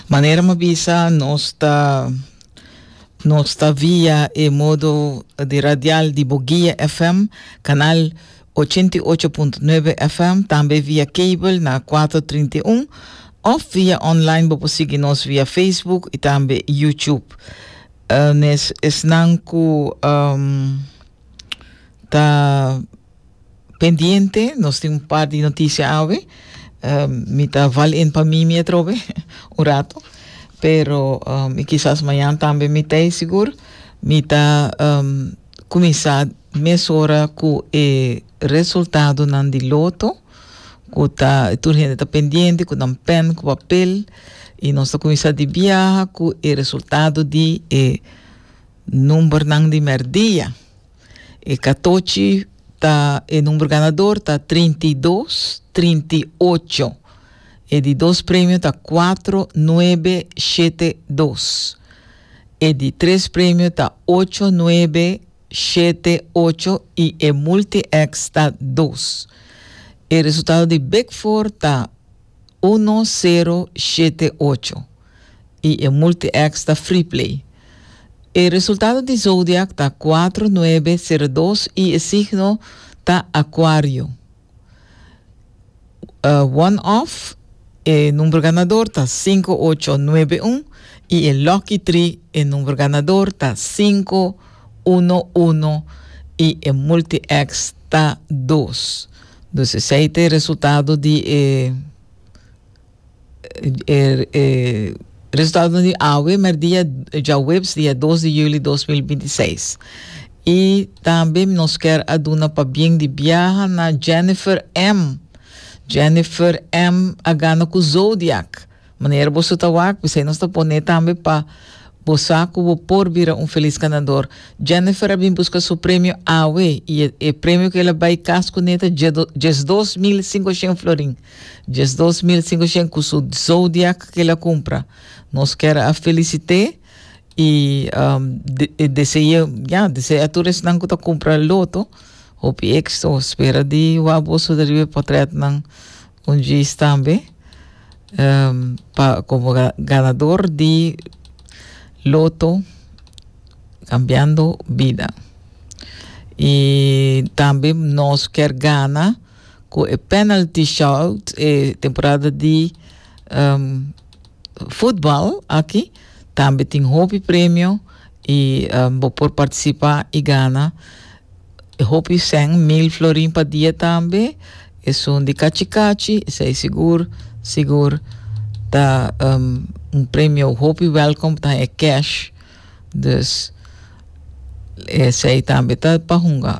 Manera mi a bisa, nos ta, nos ta via e modo di radial di Boguia FM, canal 88.9 FM, tambe via cable na 431, of via online bo por sigui nos via Facebook y tambe YouTube. Uh, nes, esnan cu um, ta Pendiente, nos tin un par di noticia awe. Mi ta val in pa Mimi atrobe un rato, pero i kisas mañan tambe mi ta ei sigur. Mi ta kuminsá mesora ku e resultadonan di loto ku ta tur hende ta pendiente ku nan pèn ku papel i nos ta kuminsá di biaha ku e resultado di e numbernan di mèrdia. E katochi ta e number ganador ta trinta i dos, trinta i ocho. E di dos premio ta kuatro, nuebe, shete, dos. E di tres premio ta ocho, nuebe, shete, ocho i e multi-X ta dos. E resultado di Big Four ta. uno sero shete ocho i e Multi-X ta Freeplay. E resultado di zodiak ta kuatro nuebe sero dos i e signo ta Akuario. One Off, e number ganador ta sinku ocho nuebe un i e Lucky Three, e number ganador ta sinku uno uno i e Multi-X ta dos. Dus esei ta e resultado di e e resultadonan di awe merdia djaweps dia dos di juli dos mil binti i seis. I tambe nos kier a duna pabien di biaha na Jennifer M. Jennifer M. a gana ku Zodiac. Manera boso ta wak, bisai nos ta pone tambe pa bo sa cu bo por bira un felis ganador. Jennifer a bin busca su premio awe y e e premio cu el a bay cas cu ne ta djedo diesdos mil cincoshen florin. Diesdos mil cincoshen cu su Zodiac cu el a cumpra. Nos ker a felicite y um, de, e dese'e, ya, dese'e a tur esnan cu ta cumpra loto hopi exito. Spera di wak boso deriba e potret nan un djis tambe. pa komo ganador di loto Cambiando Bida. I tambe nos ker gana ku e penalty shout e temporada di um, futbal aki tambe tin hopi premio i um, bo por partisipá i gana. E hopi sèn mil florin pa dia tambe. Esun di kachi kachi, esei sigur, sigur ta um, un premio hopi welkom, ta e cash. Dus esei tambe ta pa hunga.